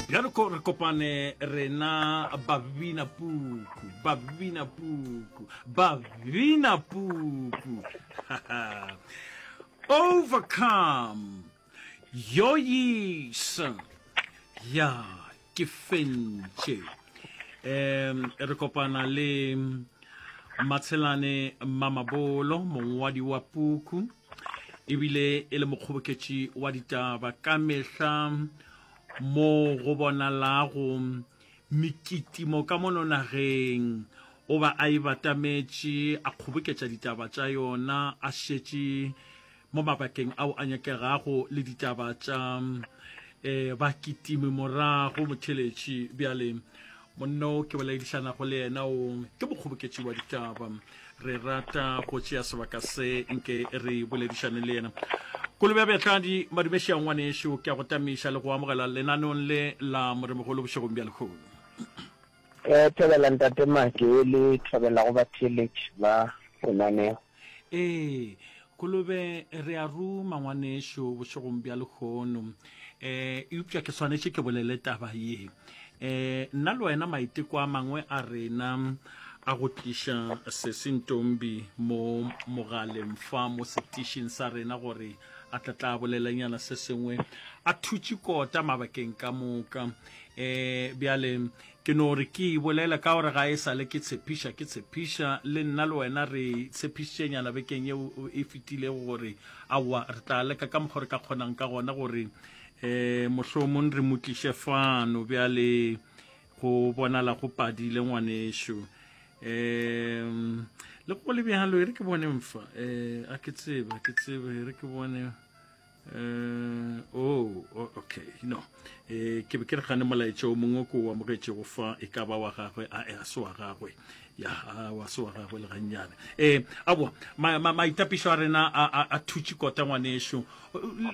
bjalo ko re kopane rena babina puku babina puku babina puku overcome yoyisa ya ke fentše um re kopana le matshelane mamabolo mongwadi wa puku ebile e le mokgoboketši wa ditaba ka mehla mo go bonalago mekitimo ka mono nageng o ba a e batametše a kgoboketša ditaba tša yona a šetše mo mabakeng ao a nyakegago le ditaba tša um bakitimi morago motheletši bjale monno ke boledišanago le yena o ke mokgoboketši wa ditaba re rata go tšea sebaka se nke re boledišane le yena kolo bja bjatladi madumeša ngwaneešo ke a go tamiša le go amogela lenanong le la moremogolo bošegong bja lekgolo Ke thobela Ntate Make le thobela go batheeletši ba lenaneo. Ee, Kolobe, re a ruma, ngwanešu, bošegong bja lehono. Um eupša ke swanetše ke bolele taba ye. Um nna le wena, maiteko a mangwe a rena a go tliša Sesi Ntombi mo mogaleng fa mo setišing sa rena gore a tla tla bolelenyana se sengwe, a thutše kota mabakeng ka moka. E, bjale, ke no re ke e bolele ka gore ga e sa le ke tshepiša, ke tshepiša, le nna le wena re tshepišitšenyana bekeng yeo e fetilego gore, aowa, re tla leka ka mokgwa re ka kgonang ka gona gore e, mohlomong re mo tliše fano. Bjale, go bonala go padile, ngwanešu. E, le go le bjalo, e re ke bone mfa. E, a ke tsebe, a ke tsebe, e re ke bone. Uh, oh, oh, okay no eh ke be ke re gane molaetša o mongwe ko o amogetšego fa e ka ba wa gagwe a e se wa gagwe ya a wa se wa gagwe le gannyane eh aboa maitapišo a rena a thutše kota ngwaneešo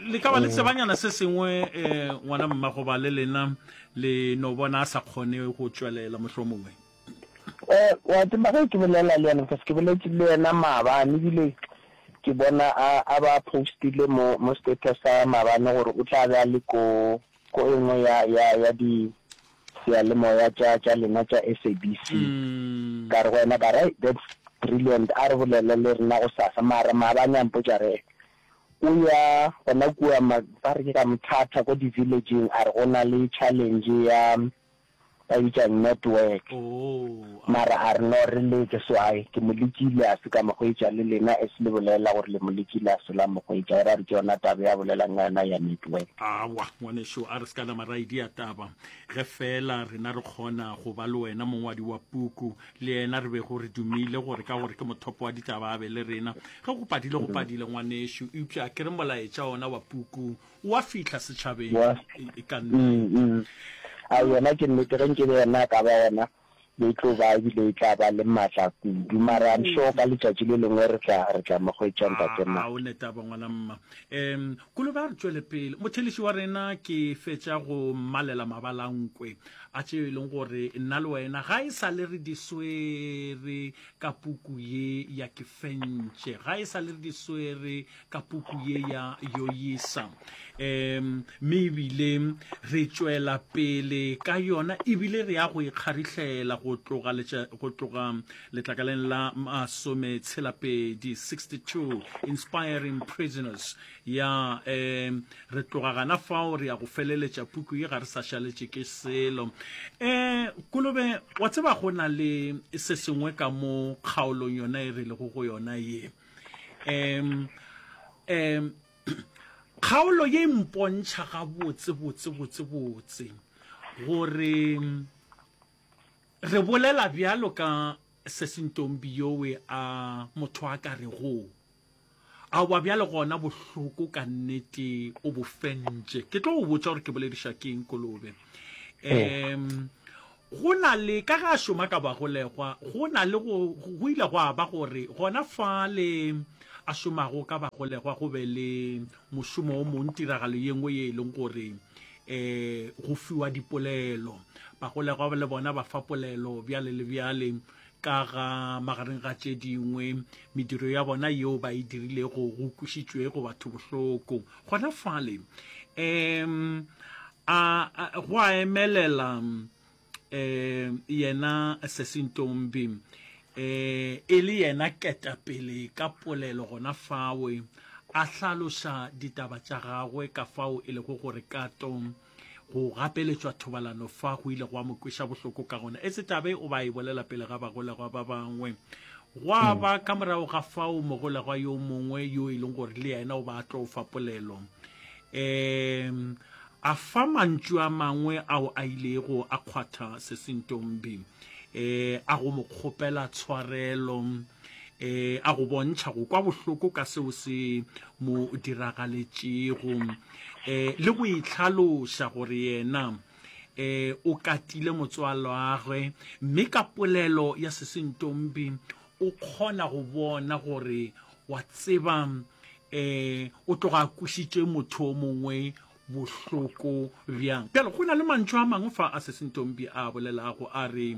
le ka ba le tsebanyana se sengwe um ngwana mmagoba le lena le no bona a sa kgone go tšwelela mohlomongwe Eh, wa tseba ge ke bolela le yena because ke boletše le yena maabane ebile ke bona a a ba postile mo mo status sa maabane gore o tla be a le ko ko e nngwe ya ya ya di seyalemoya tša tša lena tša SABC mm. ka re go wena ka re that's brilliant a re bolele le rena go sasa mara maabane a mpotša re o ya gona kua ba re ke ka mothata ko di-villageng a re go na le challenge ya Ba bitša network. Mara a re no re leke so I ke mo lekile a se ka mo hwetša le lena as le bolela gore le mo lekile a se la mo hwetša gore a re ke yona taba ya bolelang ka yona ya network. Awa ngwanešu a re se ka la mara idea taba ge fela rena re kgona go ba le wena mongwadi wa puku le yena re bego re dumile gore ka gore ke mothopo wa ditaba a be le rena ge go padile go padile ngwanešu eupša ke re molaetša ona wa puku Wa fihla setšhabeng Wa e ka nna mm, eng? mm. A yona ke nnete ge nke be yena a ka ba gona be e tlo ba ebile e tla ba le maatla kudu mara I'm sure ka letšatši le lengwe re tla re tla mo hwetša ntate A, a o Mati. netaba ngwana mma. Em, Kolobe a re tšwele pele. Motheleši wa rena ke fetša go mmalela mabalankwe a tšeo e leng gore nna le wena ga e sa le re di swere ka puku ye ya ke fentše. Ga e sa le re di swere ka puku ye ya yoyisa um mme ebile re tšwela pele ka yona ebile re ya go ikgarihlela go tloga go tloga letlakaleng la masome tshelapedi 62 inspiring prisoners ya um re tloga gana fao re ya go feleletša puku ye ga re sa šaletše ke selo um kolobe wa tseba go na le se sengwe ka mo kgaolong yona e re lego go yona ye Um, um, kgaolo ye mpontšha ga botse botse botse botse gore re bolela bjalo ka sesintombi yowe a motho a ka re go a wa bjalo gona bohloko ka nnete o bofentše ke tlo go botša gore ke bolediša keng kolobe um Go na le, ka ge a šoma ka bagolegwa, go na le go, go ile gwa ba gore gona fale a šomago ka bagolegwa go be le mošomo o mong, tiragalo ye nngwe ye e leng gore um go fiwa dipolelo. Bagolegwa le bona ba fa polelo, bjale le bjale. ka ga magareng ga tše dingwe mediro ya bona yeo ba e dirilego go kwišitšwe go batho bohloko gona fale um a go a emelela um yena sesintombi um e le yena ketapele ka polelo gona fawe a hlaloša ditaba tša gagwe ka fao e lego gore kato Go gapeletšwa thobalano fa go ile gwa mo kweša bohloko ka gona, e se taba e o ba e bolela pele ga bagolegwa ba bangwe. Gwa mm. ba ka morago ga fao mogolegwa yo mongwe yo e leng gore le yena o ba a tlo fa polelo um a fa mantšu a mangwe ao a ilego a kgwatha sesintombi um a go mo kgopela tshwarelo e a go bontšha go kwa bohloko ka seo se mo diragaletšego um le go itlhaloša gore yena um o katile motswalwagwe mme ka polelo ya sesentombi o kgona go bona gore wa tseba um o tloga a kwisitše motho o mongwe bohloko bjang bjale go na le mantšho a mangwe fa a sesentombi a bolelago a re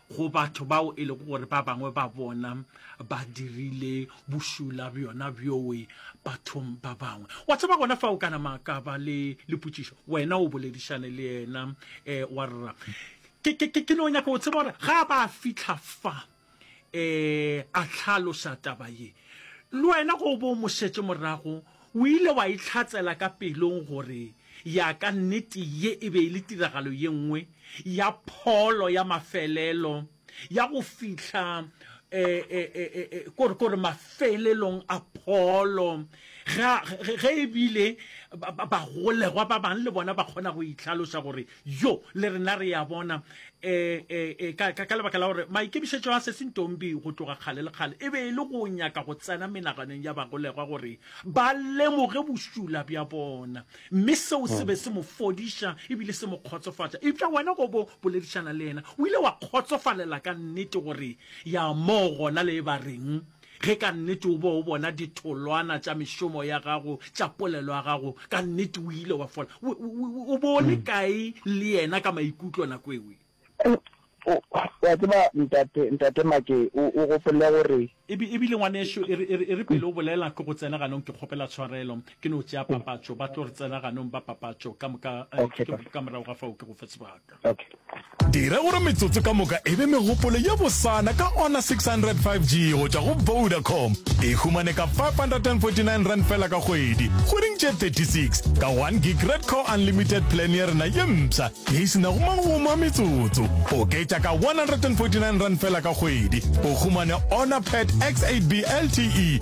go batho bao e lego gore ba bangwe ba bona ba dirile bošula bjona bjoe bathong ba bangwe wa tseba gona fa o ka nama ka ba le lepotšišo wena o boledišane le yena um wa rra ke, ke, ke, ke no nyaka o tseba gore ga ba fitlha fa um a tlhalosa taba ye le wena go bo mo šetše morago O ile wa itlhatsela ka pelong gore ya ka nnete ye e be e le tiragalo ye nngwe ya pholo ya mafelelo ya go fihla gore gore mafelelong a pholo ge ge e bile bagolegwa ba bang le bona ba kgona go itlhaloša gore Yo, le rena re a bona, e, e, e, ka, ka, ka lebaka la gore maikemišetšo a Sesi Ntombi go tloga kgale le kgale e be e le go nyaka go tsena menaganong ya bagolegwa gore ba lemoge bošula bja bona, mme seo se be se mo fodiša ebile se mo kgotsofatša. Eupša wena go bo boledišana le yena, o ile wa kgotsofalela ka nnete gore ya moo gona le e ba reng. Ge ka nnete o be o bona ditholwana tša mešomo ya gago, tša polelo ya gago, ka nnete o ile wa fola. O, o, o be o le kae le yena ka maikutlo nako ewe? Wa tseba, Ntate, Ntate Make, o, o gopole gore. Ebi, ebile ngwanešu, e re, e re, e re pele o bolela ke go tsena ganong, ke kgopela tshwarelo, ke no tšea papatšo, ba tlo re tsena ganong ba papatšo ka moka, eh, ke, ke, ka morago ga fao ke go fe sebaka. Dira gore metsotso ka moka e be megopolo ye bosana ka Honor 600 5G go tšwa go Vodacom. E humane ka 549 rand fela ka kgwedi, kgweding tše 36, ka 1 gig Red Core Unlimited plan ya rena ye mpsha ye e senago magomo a metsotso. Oketša ka 149 rand fela ka kgwedi, o humane Honor Pad X8B LTE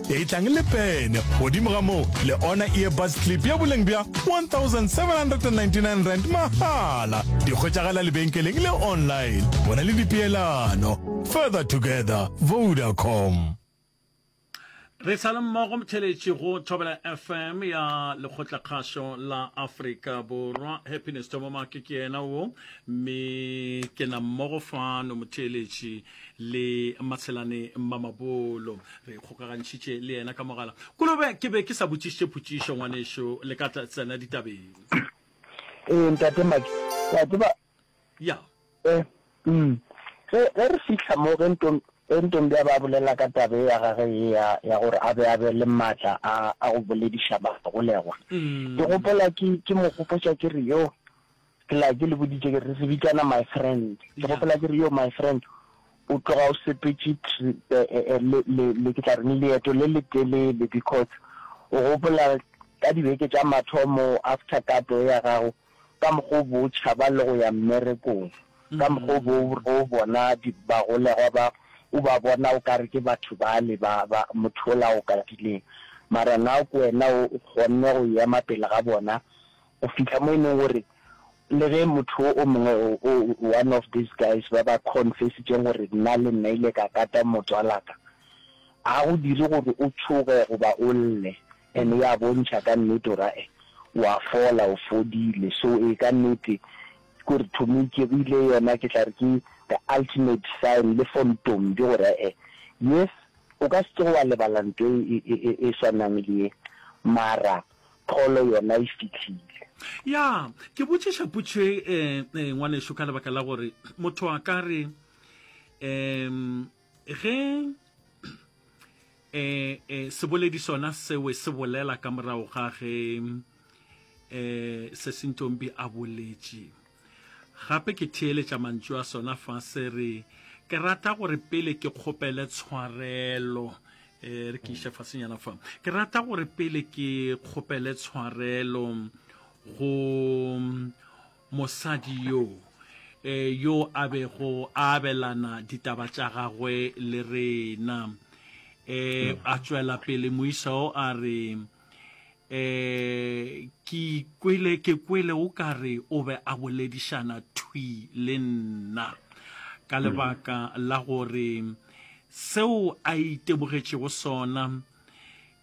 e tlang le pene godimo ga moo le ona earbus clip ya boleng bja 1799 rand mahala di kgwetšagala lebenkeleng le online bona le dipeelano further together vodacom Re sa le mmogo motheletši go Thobela FM ya Lekgotlakgašo la Afrika Borwa. Happiness Thomomake ke yena wo, mme ke na mmogo fano motheletši le matshelane mmamabolo re kgokagantšhitše le yena ka mogala kolobe ke be ke sa botšišitše photšišo ngwanešo le ka tsena ditabeng ee ntate maki wa tseba ya eh, mm. ge ge re fihla mo ge ntom ge ntombi a ba bolela ka tabe ya gage ye ya ya gore a be a be le maatla a a go bolediša bagolegwa mm. ke gopola ke ke mo gopotša ke re yo Ke la ke le boditše ke re se bitsana my friend. Ke gopola ke re yo my friend o tloga o sepetše eh, eh, eh, le le le ke tla reng leeto le le telele because o gopola ka dibeke tša mathomo after kato ya gago ka mokgo bo tšhaba le go ya mmerekong ka mokgo bo o bona bagolegwa ba o ba bona o kare ke batho ba le ba ba motho o la o katileng mara na ko wena o kgonne go ema pele ga bona Go fihla mo e leng gore le ge motho o mongwe, one of these guys ba ba confessitšeng gore nna le nna ile ka kata motswalaka, ga go dire gore o tšhoge goba o lle, and ya bontšha ka nnete gore ae wa fola, o fodile. So ee, ka nnete ke gore to me ke rile yona ke tla re ke the ultimate sign le for Ntombi gore ae yes o ka se tsoge wa lebala nto e swanang le ye mara Pholo yona e fihlile. Ya, ke botšiša potšo e, e, e, ngwanešu, ka lebaka la gore motho a ka re, um, ge e, e, seboledi sona sewe se bolela ka morago ga ge e, se sentšombi a boletše. Gape ke theeletša mantšu a sona fa se re, Ke rata gore pele ke kgopele tshwarelo. E re ke iša fasenyana fa. Ke rata gore pele ke kgopele tshwarelo go mosadi yo e, yo a bego a abelana ditaba tša gagwe le rena. E a tšwela pele moisa o a re, um ke kwele ke kwele o ka re o be a boledišana thwi le nna ka lebaka la gore seo a itebogetšego sona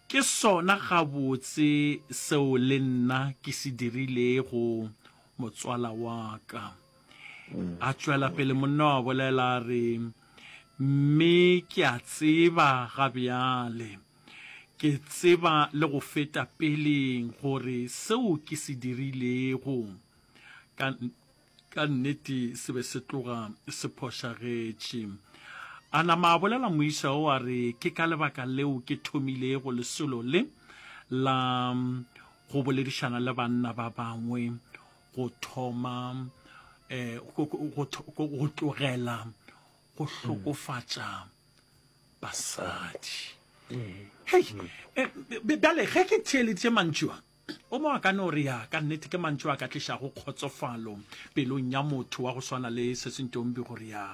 ke sona gabotse seo le nna ke se dirilego motswala wa ka a tšwela pele monna wa bolela a re mme ke a tseba ga bjale Ke tseba le go feta peleng gore seo ke se dirilego ka, ka nnete se be se tloga se phošagetše. A nama a bolela moisa wo a re, Ke ka lebaka leo ke thomilego lesolo le la go boledišana le banna ba bangwe go thoma eh, go, go, go, go tlogela go hlokofatša basadi hei eh, bjale ge ke theeleditše mantšu a o mo a ka no re ya ka nnete ke mantšu a ka tlišago kgotsofalo pelong ya motho wa go swana le sesentombi gore ya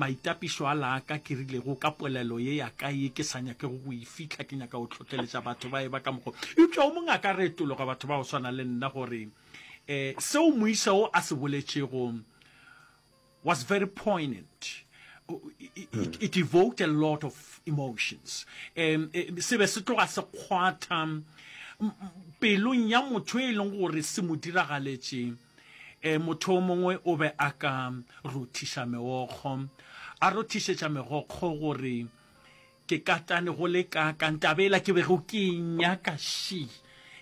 maitapišo a laaka ke rilego ka polelo ye ya ka ye ke sa nyakego go e fitlha ke nyaka go tlhotlheletša batho ba e ba ka mokgo eupša o mongwe a ka retologa batho ba go swana le nna gore um seo moisa o a se boletšego was very poignant it, it evoked a lot of emotions um se be se tloga se kgwatha pelong ya motho e leng gore se mo diragaletše eh motho o mongwe o be a ka rothiša megokgo a rothišetša megokgo gore ke katane go le ka ka ntabela ke bego ke nyaka shi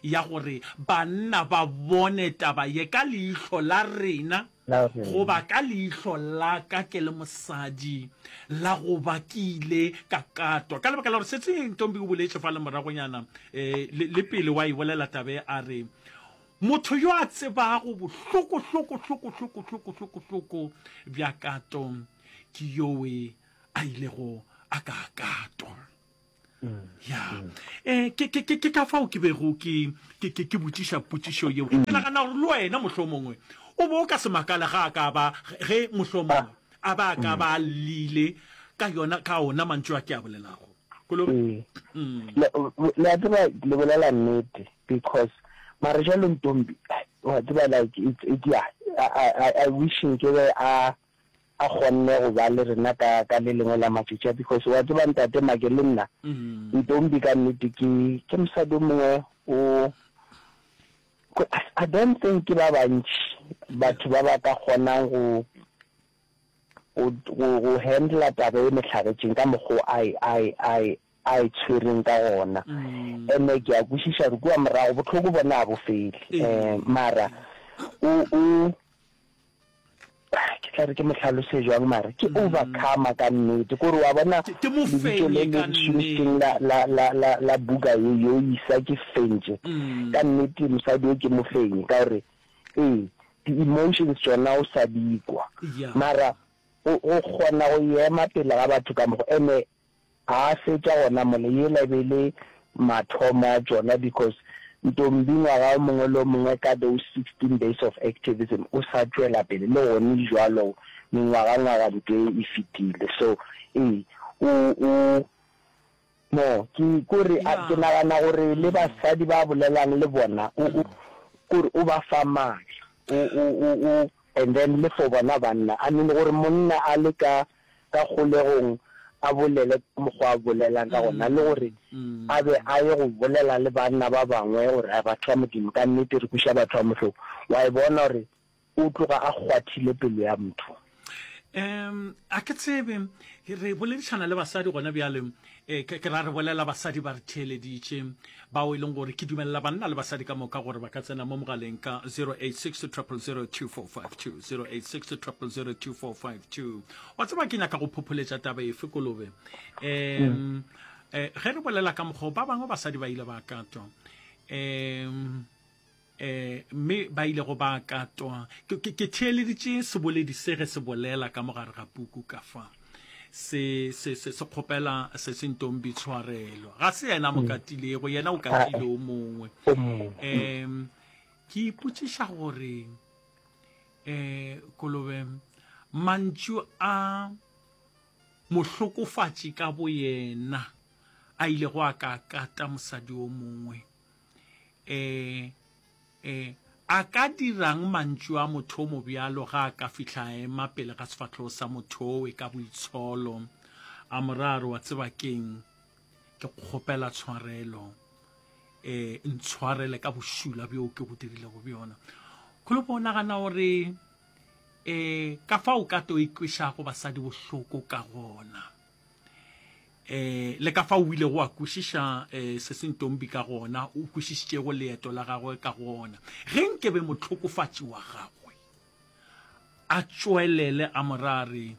ya gore banna ba bone taba ye ka leihlo la rena Go ba ka leihlo la ka ke le mosadi, la go ba ke ile ka katwa. Ka lebaka la gore setseng Ntombi o boletše fale moragonyana le, le pele wa e bolela taba ye, a re, Motho yo a tsebago bohloko, hloko, hloko, hloko, hloko, hloko, hloko bja kato ke yowe a ilego a ka katwa. ya um ke ka fao ke bego ke botšiša potšišo yeo ke nagana gore le wena mohlho mongwe o bo o ka se makale ga a ka ba ge mohlho mongwe a ba a ka ba a lile ka yona ka ona mantšu a ke a bolelago kolobe le a tseba le bolela nnete because mara jalo ntombi wa tseba like it's, it's yeah, I, I, I wish nke be a a kgonne go ba le rena ka ka le lengwe la matšatši a because wa tseba ntate make le nna ntombi ka nnete ke ke mosadi o mongwe o I don't think ke ba bantši batho ba ba ka kgonang go go handla taba e mehlagetšeng ka mokgwa ai ai ai a e tshwereng ka gona. Ene ke a kwešiša gore kua morago bohloko bona ga bo fele, mara o, o, ke tla re ke mo hlalose jwang, mara ke overcomer ka nnete. Ke gore wa bona lebitso le le šomišitseng la, la, la, la, la buka ye, yo isa ke fentše. Ka nnete mosadi yo ke mofenyi, ka gore ee, di-emotions tšona o sa di kwa. Mara go, go kgona go ema pele ga batho ka mokgwa, ene A fetša gona mole, yela e be e le mathomo a tšona because Ntombi ngwaga o mongwe le o mongwe ka those sixteen days of activism o sa tšwela pele le gone jwalo mengwaga ngwaga ntše e fetile so ee o o no ke kore ke nagana gore le basadi ba bolelang le bona o o kore o ba fa matla o o o and then le for bona banna I mean gore monna a le ka ka kgolegong a bolele ka mokgwa a bolelang ka gona le gore a be a ye go bolela le banna ba bangwe gore a batho ba modimo ka nnete re kuša batho ba mohloko wa e bona gore o tloga a kgwathile pelo ya motho um a ke tsebe re boledišana le basadi gona bjale E, ke, ke ra re bolela basadi ba re theeleditše, bao e leng gore ke dumelela banna le basadi ka moka gore ba ka tsena mo mogaleng ka 0860002452 wa tseba ke nyaka go phopholetša taba efe kolobe um eh, ge re bolela ka mokgwa ba bangwe basadi ba ile ba katwa um um mme ba ilego ba katwa ke theeleditše seboledi se ge se bolela ka mogare ga puku ka fa se se se se kgopela se se ntong bitshwarelo ga se yena mo mm. katilego yena o katile o mongwe um ke ipotsiša gore um kolobe mantšu a mohlokofatši ka boyena a ilego a ka kata mosadi o mongwe Ee, ee, a ka dira'ng mantšu a motho o mobjalo ge a ka fihla a ema pele ga sefahlogo sa motho owe ka boitsholo, a mo raa re, Wa tseba ke'ng? Ke go kgopela tshwarelo. Ee, ntshwarele ka bošula bjoo ke go dirilego bjona. Go le bo nagana gore ee ka fao o ka tlo ikwešago basadi bohloko ka gona? eh le ka fa o ile go a kwešiša eh se se ntombi ka gona o kwešišitšego leeto la gagwe ka gona ge nke be motlhokofatši wa gagwe a tšwelele a morare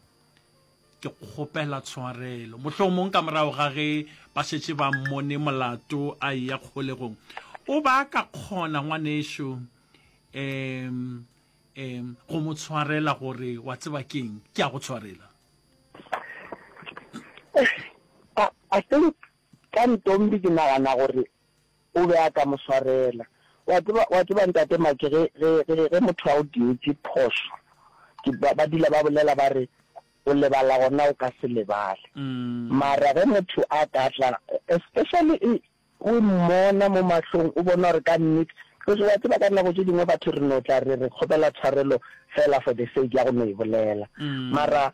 ke kgopela tshwarelo mohlomong ka morago ga ge ba šetše ba mmone molato a eya kgolegong o ba ka kgona ngwanešo um um go mo tshwarela gore wa tseba keng ke a go tshwarela I, I think ka ntombi ke nagana gore o be a ka mo swarela wa tseba wa tseba ntate make ge ge ge ge motho a o dietse phoso ke ba ba dula ba bolela ba re o lebala gona o ka se lebale mm. mara ge motho a ka tla especially O mmona mo mahlong, o bona gore ka nnete, because wa tseba ka nako tše dingwe batho re no tla re re kgopela tshwarelo fela for the sake ya go no e bolela. Mara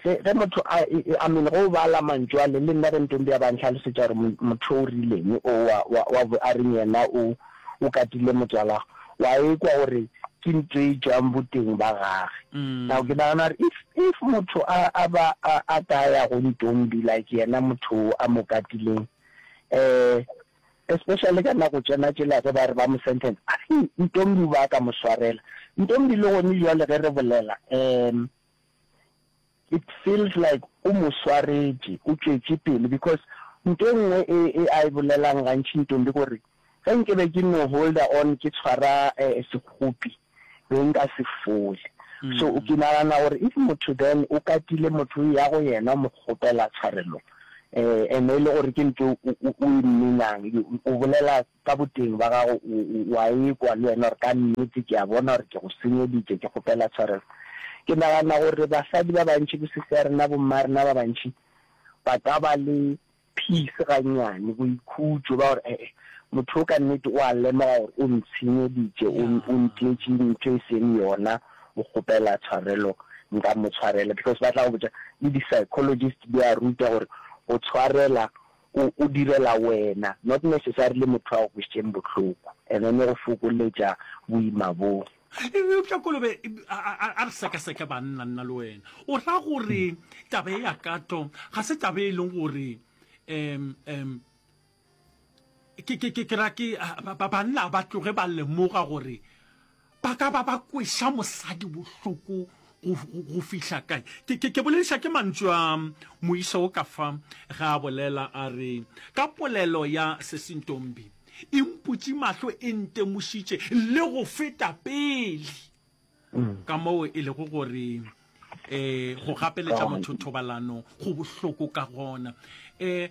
ge ge motho a, I mean ge o bala mantšu ale, le nna ge Ntombi a ba nhlalosetša gore mo, motho o rileng o wa, wa, wa bo a reng yena o, o katile motswalagwe, wa ekwa gore ke ntho e tšwang boteng ba gage. Now ke nagana gore if, if motho a, a ba a, a ka ya go Ntombi like yena motho o a mo katileng, eh especially ka nako tsena tsela ge ba re ba mo sentence a se ntombi ba ka mo swarela ntombi le gone jwale ge re bolela um it feels like o mo swaretše o tšwetše pele because nto e nngwe e, e a e bolelang gantši ntombi gore Ge nke be ke no holder on ke tshwara sekhupi be nka se fole. So ke nagana gore if motho then o katile motho o eya go yena o mo kgopela tshwarelo and e le gore ke ntho o e mminang o bolela ka boteng ba gago o a ekwa le wena gore ka nnete ke a bona gore ke go senyeditše ke kgopela tshwarelo. Ke nagana gore basadi ba bantši bo sisi ya rena bo mma rena ba bantši ba ka ba le Peace gannyane, boikhutšo ba gore ee, motho yo ka nnete o a lemoga gore o ntshenyeditše, o, o ntietše ntho e seng yona, o kgopela tshwarelo, nka mo tshwarela. Because ba tla go botša, le di-psychologist di a ruta gore go tshwarela o, o direla wena, not necessarily motho a go kwešitšeng bohloko, and then e go fokoletša boima boo. eupša kolobe a re sekaseke banna nna le wena o ra gore taba e ya kato ga se taba e leng gore um um ke ra ke banna ba tloge ba lemoga gore ba ka ba ba kweša mosadi bohloko go fihla kae ke, ke, ke bolediša ke mantšu a moisa wo ka fa ga a bolela a re ka polelo ya sesintombi e mputše mahlo e ntemošitše le go feta pele ka moo e lego gore eh go gapeletša motho thobalano go bohloko ka gona eh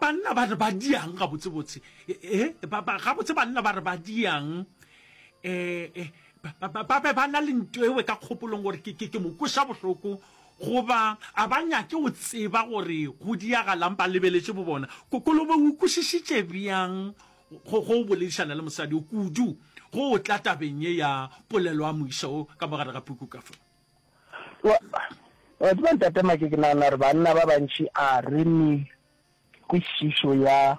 banna ba re ba diang gabotsebotse eh gabotse banna ba re ba diang eh Ba be ba na le nto ewe ka kgopolong gore ke mo kweša bohloko goba a ba nyake go tseba gore go diagalang ba lebeletše bo bona. Kolobe o kwešišitše bjang go go boledišana le mosadi yo kudu go o tla tabeng ye ya polelo a mo iša wo ka mo gare ga puku ka fa? Wa tseba Ntate Make, ke nagana gore banna ba bantši a re ne kwešišo ya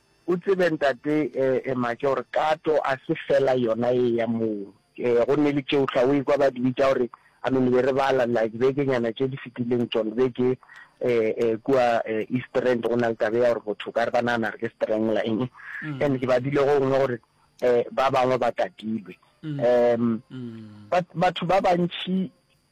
O tsebe Ntate Maja gore kato a se fela yona ye ya moo. Go nne le tšeo hla o ekwa ba di bitša gore, I mean be re bala la dibekenyana tše di fetileng tšona be ke kua East Rand go na le taba ya gore botho o ka re ba nagana re ke strangler eng. And ke badile go nngwe gore ba bangwe ba katilwe. But batho ba bantši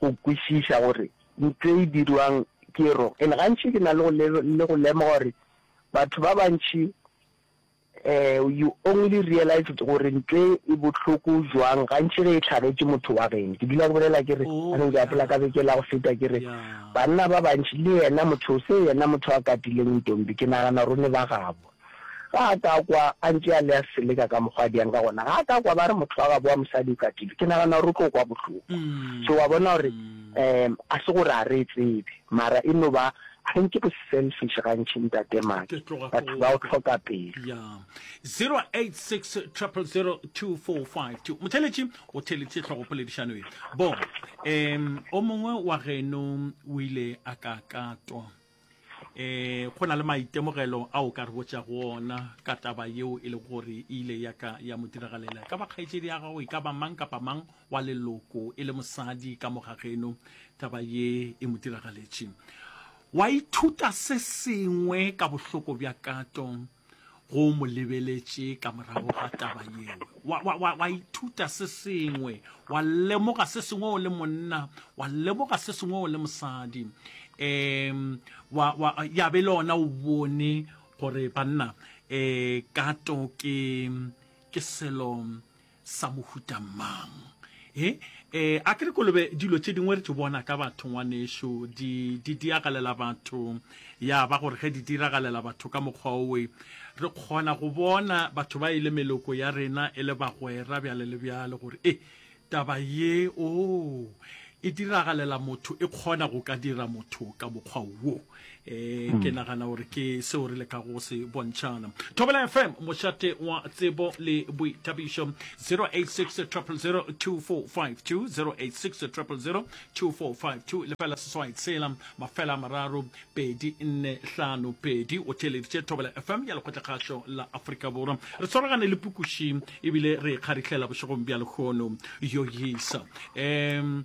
go kwešiša gore ntlo e dirwang ke e rong. And gantši ke na le go lemoga gore batho ba bantši um you only realize gore ntlo e e bohloko jwang gantši ge e tlhagetše motho wa geno. Ke dula ke bolela ke re oh, anong ke apola ka beke la go feta ke re banna ba bantši le yena motho o se yena motho a katileng ntombi ke nagana gore o ne ba gabo Ga a ka kwa a ntše a le a seleka ka mokgwa a diang ka gona. Ga a ka kwa ba re motho wa gabo wa mosadi o katile. Ke nagana gore o tlo kwa bohloko. So wa bona gore um a se gore a re e tsebe mara e no ba I think ke bo-selfish gantši ntate Maki. Batho ba o tlhoka pelo. ya 086 000 2452 motheletši o theletše tlhogopoledišano ye bo um o mongwe wa geno o ile a ka katwa E, go na le maitemogelo a o ka re botša go ona ka taba yeo e le gore e ile ya ka ya mo diragalela. Ka ba kgaetšedi ya gago e ka ba mang kapa mang wa leloko e le mosadi ka moga geno taba ye e mo diragaletše. Wa ithuta se sengwe ka bohloko bja kato go mo lebeletše ka morago ga taba yeo wa, wa, wa, wa ithuta se sengwe wa lemoga se sengwe o le monna wa lemoga se sengwe o le mosadi um wa, wa, ya be le ona o bone gore banna um kato ke ke selo sa mohuta mang e e a ke re kolobe dilo tše dingwe re tše bona ka batho ngwanešu di di diragalela batho ya ba gore ge di diragalela batho ka mokgwa owe re kgona go bona batho ba e le meloko ya rena e le bagwera bjale le bjale gore e taba ye o e diragalela motho e kgona go ka dira motho ka mokgwa wo e ke nagana gore ke seo re leka go se bontšhana thobela fm mošate wa tsebo le boithabišo 086 0002452 086 0002452 lefela seswai tshela mafela mararo pedi nne hlano pedi o theleditše thobela fm ya lekgotlakgašo la aforika borwa re tshwaragane le pukuši ebile re kgarihlela bošegong bja lekgono yo yisa um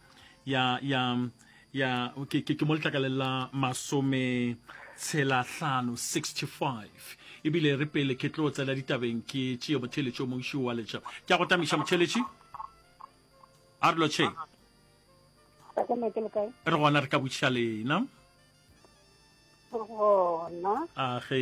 ya ya ya ke ke mo letlakaleng la masome tshelahlano 65 ebile re pele ke tlo tsela ditabeng ke tšee motheletši o montši wa letša ke a go tamiša motheletši a re lotšhe re gona re ka botšiša lena gona a ge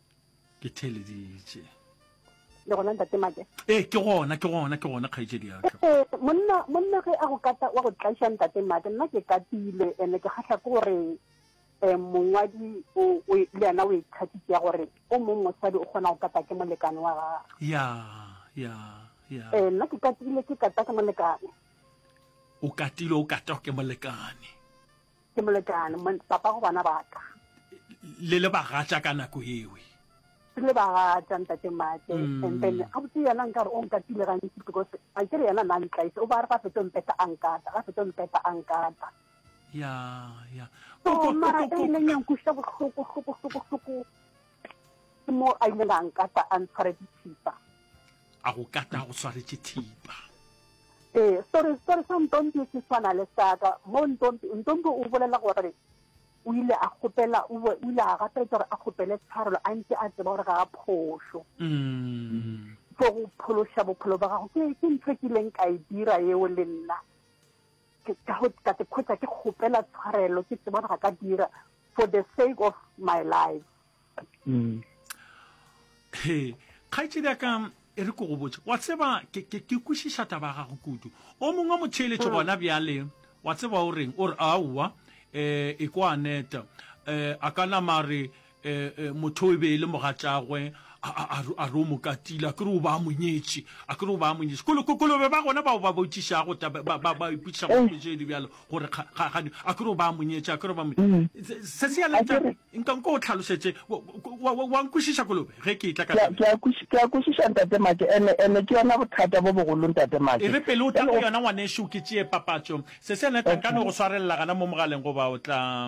ke theleditše le gona ntate make ee ke gona ke gona ke gona kgaitsedi yaka ee monna monna ge a go kata wa go tlaiša ntate make nna ke katile ene ke kgahla ke gore um mongwadi le yena o ikgatitse ya gore o mong mosadi o kgona go kata ke molekane wa gage ya ya ya ee nna ke katile ke kata ke molekane o katile o kata ke molekane ke molekane papa go bana baka le le bagatša ka nako ewe se le bagatša ntate mate mm. and then ga botse yena nka re o nkatile gantsi because a kere yena na ntlaise o ba re ga fetso mpeta a nkata ga fetso mpeta a nkata ya ya mara e leng yang kuša bohloko hloko hloko hloko Ke mo a ileng a nkata a ntshwaretse thipa. A go kata a go tshwaretse thipa. Ee, story story sa Ntombi se tshwana le saka mo Ntombi Ntombi o bolela gore o ile a kgopela o bo- o ile a gapela gore a kgopele tshwarelo a ntse a tseba gore ga a phošo Mm. for go phološa bophelo ba gago ke ke ntho e ke ileng ka e dira eo le nna Ke ka go ka ikhwetša ke kgopela tshwarelo ke tseba ga ka dira for the sake of my life. Mm. He, kgaetšedi ya ka e re ko go botse wa tseba ke ke ke kwešiša taba ya gago kudu o mongwe motheeletše mm. gona bjale wa tseba o reng o re aowa um e kwa aneta um a ka nama re E, e, motho o e be e le mogatšagwe a re o mokatile a kere o ba a monyetše a kere o ba a monyetše kolobe ba gona bao ba botšišago ba ipotšiša go tšee di bjalo gore kgagane a kere o ba a monyetše a kere ba mm. se se yaletša nkanko o tlhalošetše wa nkwešiša kolobe ge ke etla ke a kwešiša ntate make ene ene ke yona bothata bo bogolo ntate make e re pele o tla go yona ngwanešu ke tšee papatšo se se yaletša nka no go swarelela gana mo mogaleng goba o tla